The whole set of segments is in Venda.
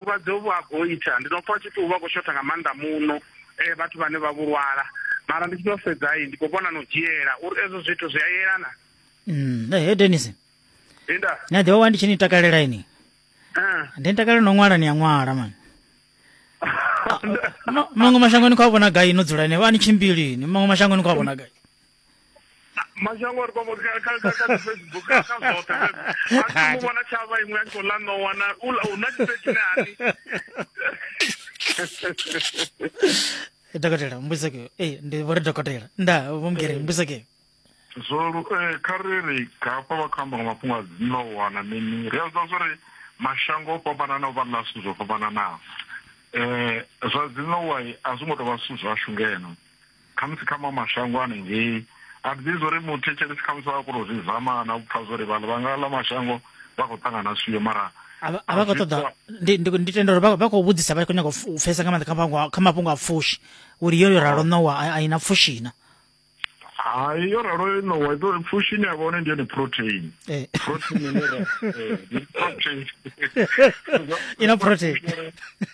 vhulwadze uvhu ha goitha ndi no pfa tshi pfi uvha kho shotha nga maanḓa muno eh vhathu vhane vha vhulwala mara ndi tshi to sedza ndi kho vhona no dzhiela uri ezwo zwithu zwi a yelana mm eh Dennis inda na ḓivha wa ndi tshi ni takalela ini eh ndi takalela no ṅwala ni ya ṅwala man maṅwe mashangoni kho vhona gai no dzula ni vha ni tshimbili ni maṅwe mashangoni kho vhona gai mashango ri kwamo ka ka ka ka Facebook ka ka zota a mu bona chava imwe nto la no wana ula una tseki nani dokotela mbusa ke eh ndi vore dokotela nda vomgere eh. mbusa ke zwo eh khariri ka pa ba khamba nga mafhungo a no wana mini ri a zwa zwo ri mashango o fhambanana o vha na zwithu zwo fhambananaho um zwa dzinowai a zwi ngo tou vha zwithu zwashu ngeno Khamusi kha maṅwe mashango ano ngei, a thi ḓivhi zwo ri muthetshelesi khamusi vha a kona u zwi zama na u pfa zwo ri vhaḽa vha nga ḽa mashango vha khou ṱangana swio mara a vha khou ṱoḓa ndi tenda uri vha khou vhudzisa vha khou nyanga u pfesa nga maanḓa kha mafhungo a pfushi uri yo yo ralo ṋowa a i na pfushi na hai yo ralo yo ṋowa iḓo pfushi ine ya vha hone ndi yone protein eh. protein eh, i na protein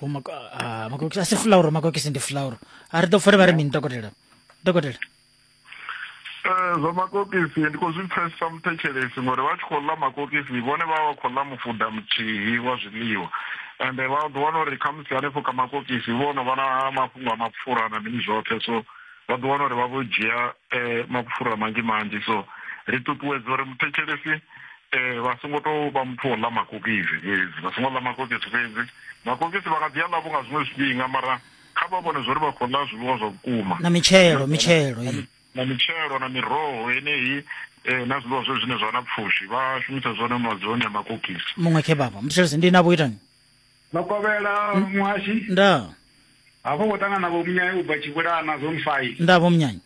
ho mako ah, makokisi a si fulauro makokisi ndi fulauro a ri ḓo pfole vha ri mini dokotela dokotela eh, zwa makokisi ndi khou zwi pfesesa muthetshelesi ngori vha tshi khou ḽa makokisi vhone vha vha khou ḽa mufuda muthihi wa zwiḽiwa ende vha ḓo wana uri khamusi hanefho ka makokisi vho no vha na mafhungo a mapfura na mini zwoṱhe so vha ḓo wana uri vha vho dzhia eh, mapfura manzhi manzhi so ri ṱuṱuwedza uri muthetshelesi um vha songo tou vha muthu wa ḽa makokisi fhedzi vha songo ḽa makokisi fhedzi makokisi vha nga ḓi a ḽavho nga zwiṅwe zwifhinga mara kha vha vhone zwa uri vha khou ḽa zwiḽiwa zwa vhukuma na mitshelo mitshelo na mitshelo na miroho yeneyi um na zwiḽiwa zwe zwine zwa na pfushi vha shumisa zwone madzoni a makokisi muṅwe khebaba muthetshelesi ndi na vho itani no kovhela hmm? muhashi nda hafho ngo tangana na vho munyanyi u bva tshivhulana zone five nda vho munyanyi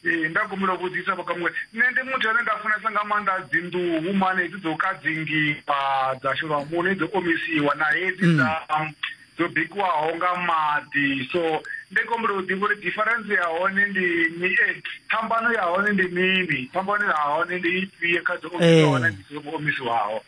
ee nda gumula vhudzisa vhakamuwe nṋe ndi muthu ane nda funesa nga maanḓa dzinḓuhu mane hedzi dzo kadzingiwa dza shelwa muṋo dzo omisiwa na hedzi hmm. dza dzo bikiwaho nga maḓi so ndi kombela u ḓivha uri difference ya hone ndi ni e eh, phambano ya hone ndi mini phambano ya hone ndi ifhio kha dzo omisiwaho na eh. dzo omisiwaho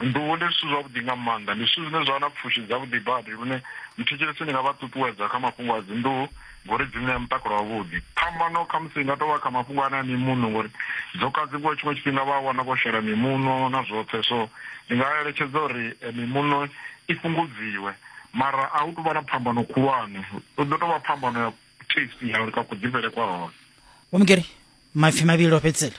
Nḓuhu ndi zwithu zwavhuḓi nga maanḓa, ndi zwithu zwine zwa vha na pfushi dzavhuḓi badi lune muthetshelesi ndi nga vha ṱuṱuwedza kha mafhungo a dzinḓuhu ngori dzi ṋea mutakalo wavhuḓi. Phambano khamusi i nga tou vha kha mafhungo ane a mimuṋo ngori dzo kadziwa tshiṅwe tshifhinga vha a wana vho shela mimuṋo na zwoṱhe, so ndi nga eletshedza uri eh, mimuṋo i fhungudziwe mara a hu tou vha na phambano khulwane, u ḓo tou vha phambano ya taste ya uri ka kuḓifhele kwa hone. Vho Mugeri, maipfi mavhili o fhedzisela.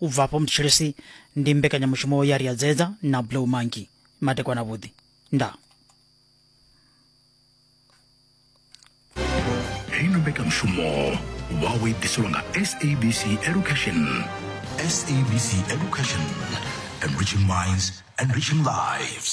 U bva afho Mthetshelesi ndi mbekanyamushumo ya Riadzedza na Blue Monkey. Matekwana vhuḓi. Ndaa. heyi no mbekanyamushumo wawo i ḓiselwa nga sabc education sabc education enriching minds enriching lives